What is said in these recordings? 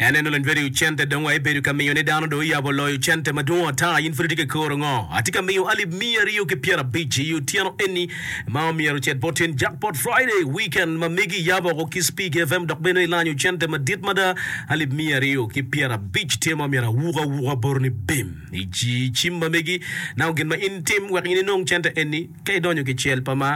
En eno lony bedo i cente dong wa ibedo ka miyo ni dano dong oyabo loyo cente madwong ata in pud itye ka koro ngo atye ka miyo alip miya aryo ki pyera abic i otyeno eni ma omyero ocet bot in jackpot Friday weekend ma megi iyabo oko kiss pig FM dok bene ilanyo cente madit mada alip miya aryo ki pyera abic tye ma omyero awuku awuka bot ni bim i cim ma megi nako gin ma in tim wek in inong cente eni ka idonyo ki cel pa ma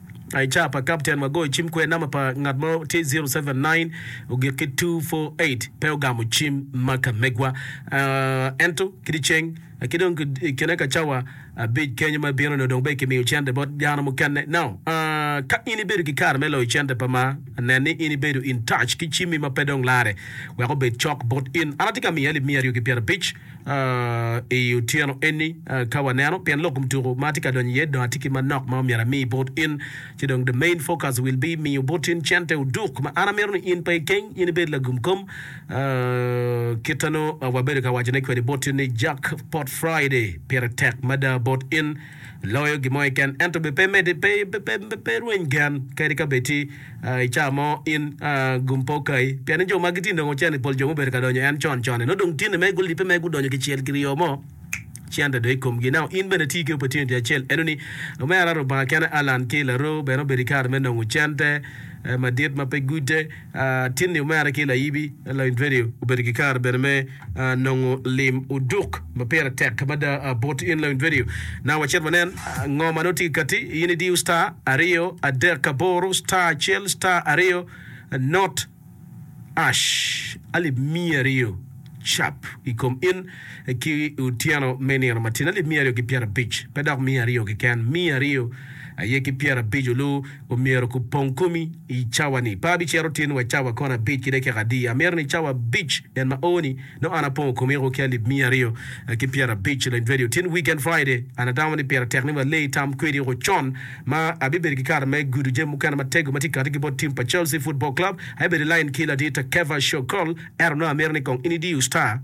I ca pa kapten ma goyo cim kwer namba pa ngat mo tye 079 ogik ki 248 pe ogamo cim ma ka megwa uh, ento kidi ceng uh, ki dong ki- i kine ka cawa abic kenyo ma bino ni odong be kimiyo cente bot dano mukene no uh, ka in ibedo ki kare me loyo cente pa ma nen ni in ibedo in touch ki cimmi ma pe dong lare wek obed cok bot in an atye ka miye alip miya aryo ki pyerabic i otyeno eni ka waneno pien lok kom tuku ma atye ka donyo iye dong atye ki manok ma myero ami bot in ci dong the main focus will be miyo bot in cente oduk ma an amito ni in pe ikeng in ibed lagum kom kita nongo wabedo ka wacone kwede bot in ni jack pot Friday pire tek mada bot in loyo gin mo keken ento bene pe rweny gen kadi ka bed tye i ca mo in gum pe okayi. Pien ni jo magi tye nongo cente, pol jo mubedo ka donyo en con con-ni nongo dong tyenni mere gulibbe mere gudonyo kicel kiryo mo cente dong i komgi. Now in bene iti ki opportunity acel eno ni Omera Lubanga kene Allan ki Laroo bene obedo i kare me nongo cente madit ma pe gute. Tyenni omera ki Layibi, Lainfedio, obedo ki kare bene me. nongo lim oduk ma pire tek mada bot in Learning Video. Now wacit wanen ngo ma nongo tye kati. In idiyo star aryo adek aboro star acel star aryo not ash alip miya aryo cap ikom in ki otyeno me nino matin alip miya aryo ki pyera abic pe dok miya aryo keken miya aryo aye ki pyera abic olu Omyero kupong komi i cawa ni, Pe abicito tin wa cawa kon abic ki dekeka adi. Amito ni cawa abic en ma oo ni, nongo an apongo komiko ki alip miya aryo ki pyer abic leng twedi otin weekend Friday. An atamo ni pire tek ni wa lee itam kwedi oko con ma abibedo ki kare me gudo jami mukene matego ma tye kati ki bot team pa Chelsea football club. Abibedo i line ki ladit Kevashow Cole, ento nongo amito ni kong in idiyo star.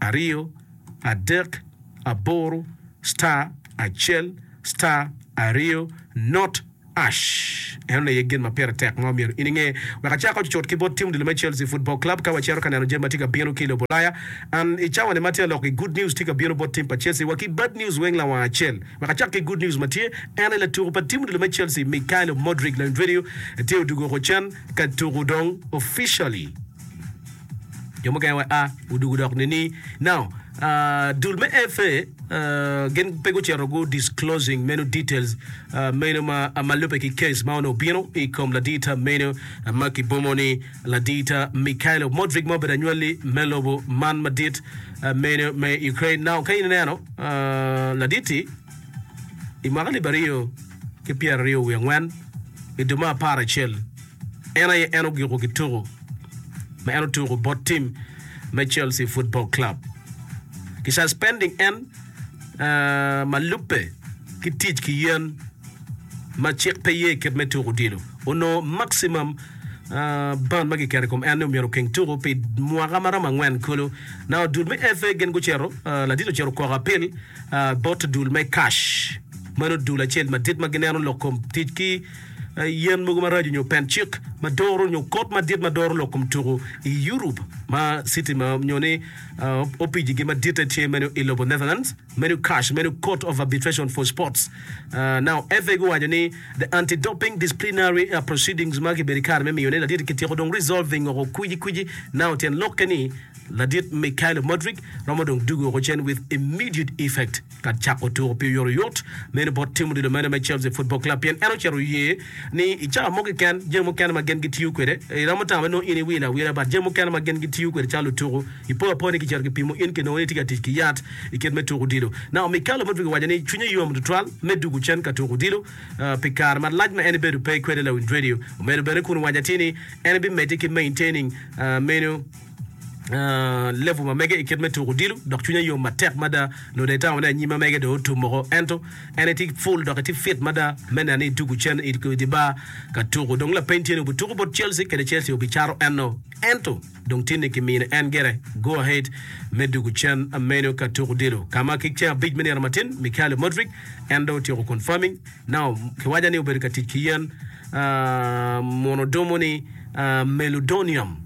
aryo, adek, aboro, star, acel, star, aryo, not ash. Eno ni aye gin ma pire tek ma omyero in inge. Wek acak ocucut ki bot tim odilo me Chelsea Football Club ka wacito ka neno jami ma tye ka bino ki i lobo Ulaya. An i cawa ni ma tye aloko gi good news tye ka bino bot tim pa Chelsea wa ki bad news weng lawanga acel. Wek acak ki good news ma tye eno ni latuku pa tim odilo me Chelsea Mykhailo Modric Lionel Dwedio tye odugo oko cen ka tuku dong officially. Jo mukene wa a odugo dok nini. Now, uh, dul me FA uh, gin pe gucito gu disclosing meno details uh, meno ma, uh, ma lube ki case ma onongo bino i kom ladita meno uh, ma kibomo ni ladita Mikhailo Modric ma obedo anywali me lobo man madit uh, meno me Ukraine. Now, ka in ineno uh, laditi i mwaka libaryo ki pyeraryo wiye angwen i duma apar acel En aye en ogiko ki tuku ma en otuku bot tim me Chelsea Football Club. Ki suspending en uh, ma lubbe ki tic ki yen ma cik pe ye kit me tuku odilo, onongo maximum uh, ban ma kiketo i kom en ni omyero okeng tuku pi mwaka ma romo angwen kulu. Now dul me FA gin gucito, uh, ladit ocito okoko apil uh, bot dul me cash. Meno dul acel madit ma gineno lok kom tic ki yen mogo maraco nyo pen cik ma doro nyo kot madit ma doro lok kom tuku i Europe ma city ma nyo ni opiji gi maditte tye meno i lobo Netherlands meno CAS meno Court of Arbitration for Sports uh, now FA guwaco ni the anti-doping disciplinary uh, proceedings ma kibedo kare me miyo ne ladit kityeko dong resolving oko kwiji kwiji now tyen lokke ni ladit Mikhailo Modric romo dong dugo oko cen with immediate effect ka cako tuko pi oyotoyot. Meno bot tim odilo mene me Chelsea Football Club pien en ocito oye ni i cawa mo keken jami mukene ma gin gitiyo kwede iromo tamo ni nongo in iwilo awila but jami mukene ma gin gitiyo kwede calo lutuku ipo apoya ni kicito kipimo in kinongo ni itye ka tic ki yat i kit me tuko odilo. Nao Mikello Mudryk owaco ni cwinye yom tutwal me dugo cen ka tuko odilo pi kare malac ma en ibedo pe kwede lawiny redio. Omedo bene kun owaco atir ni en bimedde ki maintaining meno. Level ma mege i kit me tuko odilo, dok cwinya yom matek mada. Loda itamo ni anyima mege dong otum moko, ento en itye full dok itye fit mada me neno ni itugo cen i di bar ka tuko. Dong lapeny tye ni ogutuko bot Chelsea kede Chelsea ogicato en-no, ento dong tinni kimino en gire go ahead me dugo cen meno ka tuko odilo, ka ma ki ceng abic me nino matin Mikhailo Mudryk en dong otyeko confirming now kiwaca ni obedo ka tic ki yen muno dumo ni meldonium.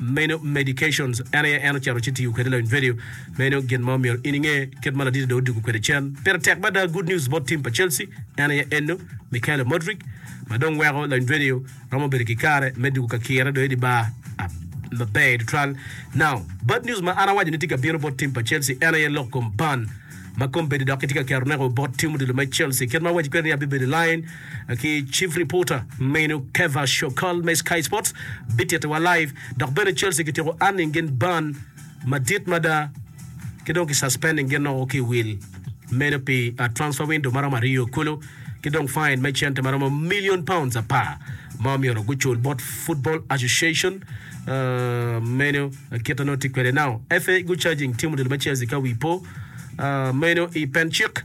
Meno medications en aye en ocito ci tiyo kwede loyo nvedio. Meno gin ma omyero in inge kit ma laditi do odugu kwede cen. Pire tek mada good news bot team pa Chelsea en aye eno Mykhailo Modric ma dong weko loyo nvedio romo bedo ki kare me dugu ka kire do idi bar maber tutwal. Now bad news ma an awaco ni tye ka bino bot team pa Chelsea en aye lok kom ban ma kombeddi dok kitye ka keto neko bot team odilo me Chelsea kit ma awaci kwede ni abibedo i line ki Chief Reporter menu Kevah Shokal me Sky Sports bitittiwa live dok bene Chelsea kityeko earning gin ban madit mada ki dong ki suspending gin o ki i wil meno pi transfer window maromo aryo kulu ki dong fine me cente maromo million pounds apar ma myero gucul bot Football Association menu kite nongo tye kwede now FA gu charging team odilo me Chelsea ka wi po menu i pen cik.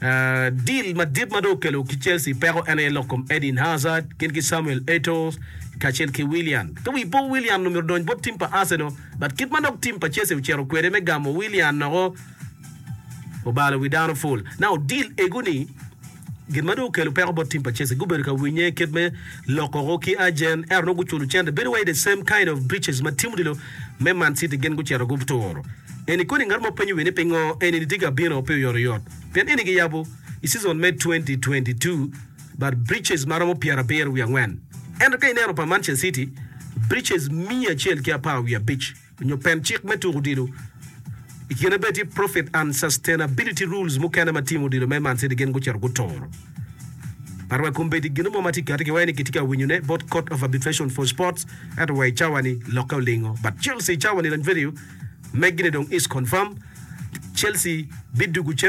Dil madit ma dong okelo ki Chelsea peko en aye lok kom Eden Hazard gin ki Samuel Eto'o kacel ki Willian. Ka wi po Willian omito donyo bot tim pa Arsenal, but kit ma dok tim pa Chelsea ocito kwede me gamo Willian noko obalo wi dano full. Now dil egu ni gin ma dong okelo peko bot tim pa Chelsea gubedo ka winye kit me lok oko ki agent ento nongo guculo cente bedo wai the same kind of breaches ma Timothy lo me Man City gin gucito guturo. Eni kodi ngat mo penyo wi ni pingo enini tye ka bino pe oyoto oyot pien eni giyabo i season me 2022 bad breaches ma romo pyerabiro wiye angwen ento ka ineno pa Manchester City breaches miya acel ki apar wiye abic onyo pen cik me tuko odilo i kine bene tye profit unsustainability rules mukene ma team odilo me Man City gin gucito guturo. Par wa kombeddi gino mo ma tye kati ki wai ni kitye ka winyo ne bot court of arbitration for sports ento wa icawa ni lokke olingo but Chelsea icawa ni Ranverio meggi ne dong is confirm Chelsea bidugu cen